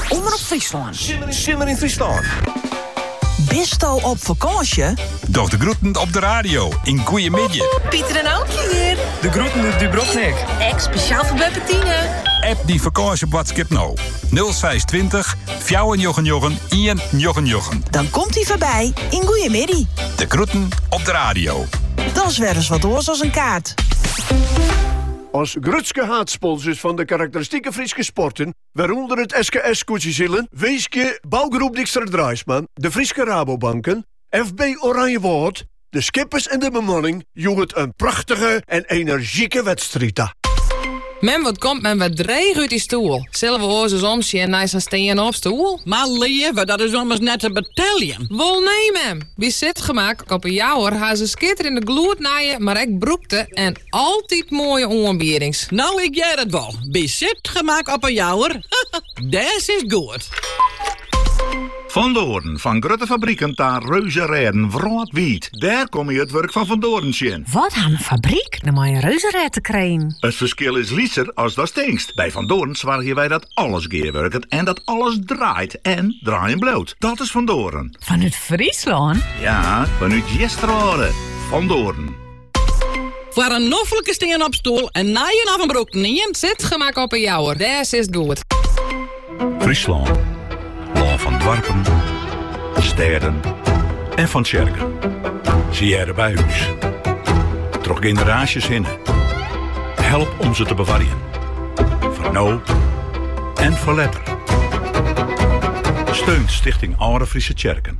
Omrop Fryslân. Simmer yn Fryslân. Bisto op fakânsje? Doch de groeten op de radio yn Goeiemiddei. Pieter en Aukje hjir. De groeten út Dubrovnik. Ek spesjaal foar beppe Tine. App dyn fakânsjeboadskip no. 0620 499 199. Dan komt hy foarby yn Goeiemiddei. De groeten op de radio. Dat is wer ris wat oars as in kaart. As grutske haadsponsors fan de karakteristike Fryske sporten, wêrûnder it SKS Skûtsjesilen, winskje Bouwgroep Dijkstra Draisma, de Fryske Rabobanken, FB Oranjewâld, de skippers en de bemanning hjoed in prachtige en enerzjike wedstriid ta. Mem, wat komt mem wer dreech út dy stoel. Sille we oars ris omsjen nei sa'n stean-op stoel? Mar leave, dat is ommers net te beteljen. Wol nee mem! By Zitgemak op 'e Jouwer ha se skitterjende gloednije, mar ek brûkte en Altyd moaie oanbiedings. No ik hear it wol, by Zitgemak op 'e Jouwer, dêr sitst goed. Van Doren, fan grutte fabriken ta reuzerêden wrâldwiid, dêr komme je it wurk fan Van Doren tsjin. Wat ha in fabryk no mei in reuzerêd te krijen? It ferskil is lytser as datst tinkst. By Van Doren soargje wy dat alles gearwurket en dat alles draait en draaien bliuwt. Dat is Van Doren. Fanút Fryslân? Ja, fanút Easterwâlde. Van Doren. Foar in noflike stean-op stoel, in nijen of in brûkten ien, Zitgemak op 'e Jouwer. Dêr sitst goed. Fryslân. Lân fan doarpen, stêden en fan tsjerken. Sy hearre by ús. Troch generaasjes hinne. Help om se te bewarjen. Foar no en foar letter. Steun Stichting Alde Fryske Tsjerken.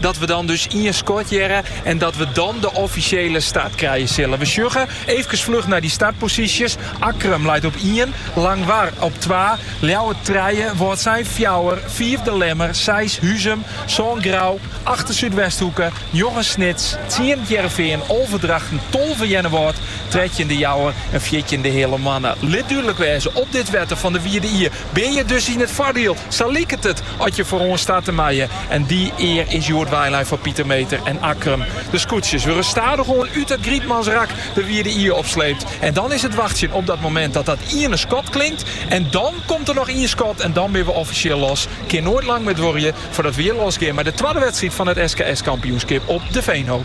Dat we dan dus ien skot hearre en dat we dan de offisjele start krije sille. We sjogge eefkes fluch nei dy startposysjes. Akkrum leit op ien, Langwar op twa, Ljouwert trije, Wâldsein fjouwer, fiif De Lemmer, seis Huzum, sân Grou, acht de Súdwesthoeke, njoggen Snits, tsien Hearrenfean, alve Drachten, tolve Earnewâld, trettjin De Jouwer en fjirtjin De Heale Moanne. Lit dúdlik wêze, op dit wetter fan de Wide Ie Binne je dus yn it foardiel, sa liket it, as je feroan starte meie. En dy ear is hjoed weilein foar Pieter Meeter en Akkrum. De skûtsjes wurde stadichoan út it Grietmansrak de Wide Ie op sleept. En dan is it wachtsjen op dat momint dat dat iene skot klinkt. En dan komt der noch ien skot en dan binne we offisjeel los. Kin noait lang mear duorje foardat we hjir losgean mei de twadde wedstriid fan it SKS-kampioenskip op De Veenhoop.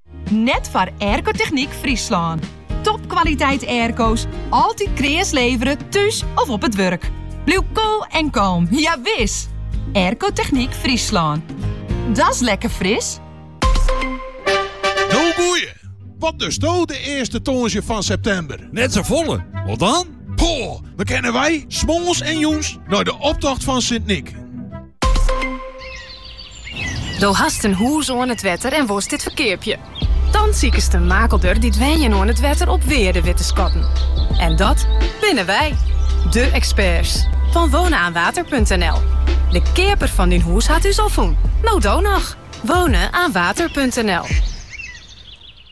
Net foar Aircotechniek Fryslân. Topkwaliteit airco's, altyd kreas levere, thús of op it wurk. Bliuw koel en kalm, ja wis! Aircotechniek Fryslân. Dat's lekker fris! No goeie! Wat dosto de earste tongersdei fan septimber? Net sa folle, wat dan? Poeh, dan kinne wy, smoarns en jûns, nei de optocht fan Sint Nyk. Do hast in hûs oan it wetter en wolst dit ferkeapje. Dan sikest de makelder die wenjen oan it wetter op wearde wit te skatten. En dat binne wy, de experts van wonenaanwater.nl. De keaper fan dyn hûs hat ús al fûn. No do noch. Wonenaanwater.nl